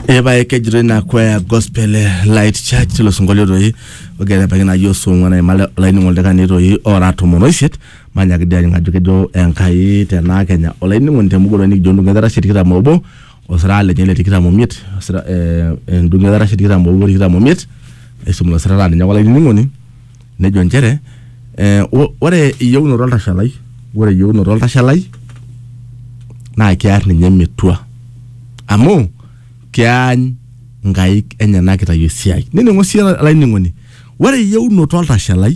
epae kejito ina kwaya gospel eh, light church tilo sinkolio toi ogira ebaiki naji osong'uan aimale olainining'o oldakani toi ora tomon oisiet manyaki dii ajing ajo kejo enkai tenaa kenya olainining'oni temugoloi nikijo endung'o etarashe tikitam obo osira lenye le tikitam omiet osira eh, endung'o etarashe tikitam obo tikitam omiet aisum ilo sirata ninye ake olainining'oni nejo nchere eh, o- ore eyieunoto oltashalai ore eyieunoto oltashalai naa kear ninye metua amu keany nkaik enyenak itayu esiai nining'o sii olainining'oni ore eyieunoto oltashalai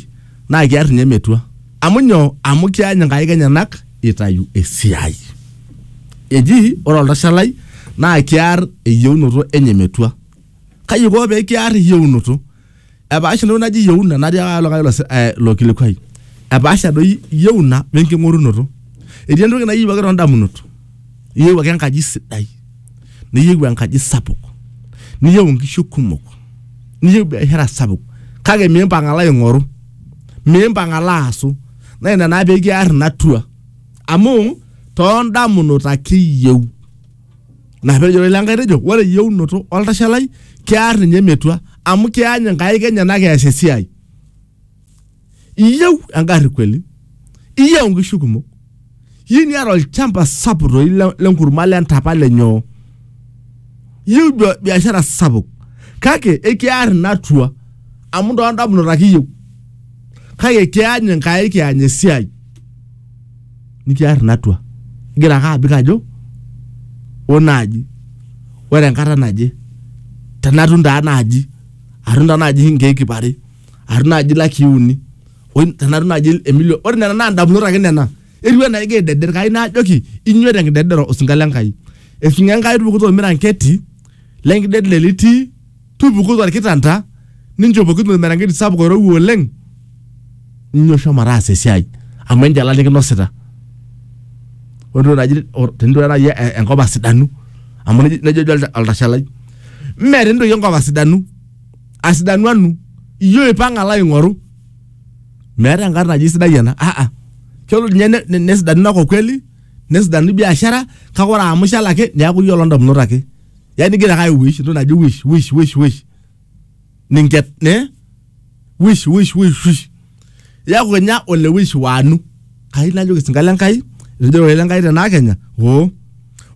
naa kear ninye metua amu nyoo amu keany nkaik enyenak itayu esiai eji ore oltashalai naa kear eyieunoto enye metua kai iko pee kiar eyieunoto Epaasha entoki naji yeuna natiaka likae olas- eh, lo kilikuai. Epaasha doi yeuna we nking'orunoto. Etii entoki nayieu ake too ndamunot. Iyieu ake enkaji sidai. Niyieu enkaji sapuk. Niyieu inkishu kumok. Niyieu biashara sapuk. Kake miimpang' alo aing'oru. Miimpang' alo aasu. Naa ina naa pekiar ina tour. Amu too ndamunot ake iyieu. Naa pejo ilo Enkai tejo ore eyieunoto oltashe lai kear ninye metua amu keany nkaik enyenak eas esiai. Iyieu engarri kweli? Iyieu nkishu kumok? Iyieu niata olchamba sapuk toi lenkurma lentapa lenyoo? Iyieu biashara sapuk kake ekiar ina atua amu toondamunot ake iyieu. kake kiany enkai kiany esiai nikiar inatua igira ake abik ajo o naaji ore enkata naje tenatum taa naaji atum taa naaji inkeek ip are atum naaji ilakii uni oi tenatum naaji emilion ore nena naa indamunot ake nena etiu enaa igira aideder kai naajoki inyoo tenkidedero osinka le Enkai ekinyi Enkai tupukuto ormiranketi lenkidedel litii Tupuku tolkitanta, ninchopoki ormerengeti sapuk oirowua oleng, ninyo shomo taasa esiai amu enjalan nikinosita. Ore entoki naji tenitu nai enkop asidanu amu nejo nejo duo oltashalai, mee tenitu toi enkop asidanu, asidanu anu, iyie oipang'a alo aing'oru. Meeta enkata naji sidai ena ah ah. Kelo nye ne ne nesidanu inakop kweli, nesidanu biashara kake ore amu ishal ake neeku iyie oloo ndamunot ake. yani igira ake aiwish entoki naji wish wish wish wish ninket ne wish wish wish wish yaku kenya ole wish wanu kai najoki sinka le nkai etejo ore le nkai tenaa kenya oo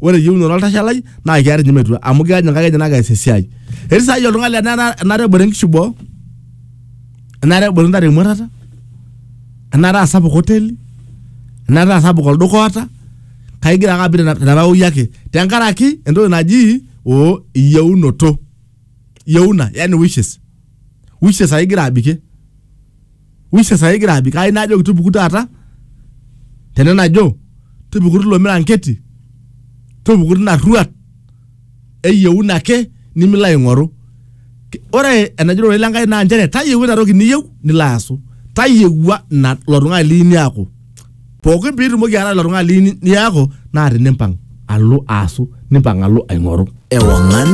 ore eyieunoto oltashe lai naa kiar ninye metua amu kiar ninye nkai enye naa kees esiai etii saai oltung'ani laa enara- enare ebore nkishu boo enare ebore ntare emuatata enare asapuk hoteli enare asapuk olduka oota kake igira ake abik teraoi ake tenkaraki entoki naji o iyieunoto ieuna yani wishes wishes ake igira abikie wishes ake igira abik ai najoki tupuku taata tene najo tupuku tilo miranketi tupuku tina rruat eyieuna ake nimilo aing'oru Ki- ore enajo ororei lenkai naa nchere tayieu ina toki niyieu nilo aasu tayiewua ina ilo tung'ani liyieu niaku pookin piitumoki ataa ilo tung'ani liyieu ni- niaku naa tinimpang alo aasu nimpang alo aing'oru Ewang'an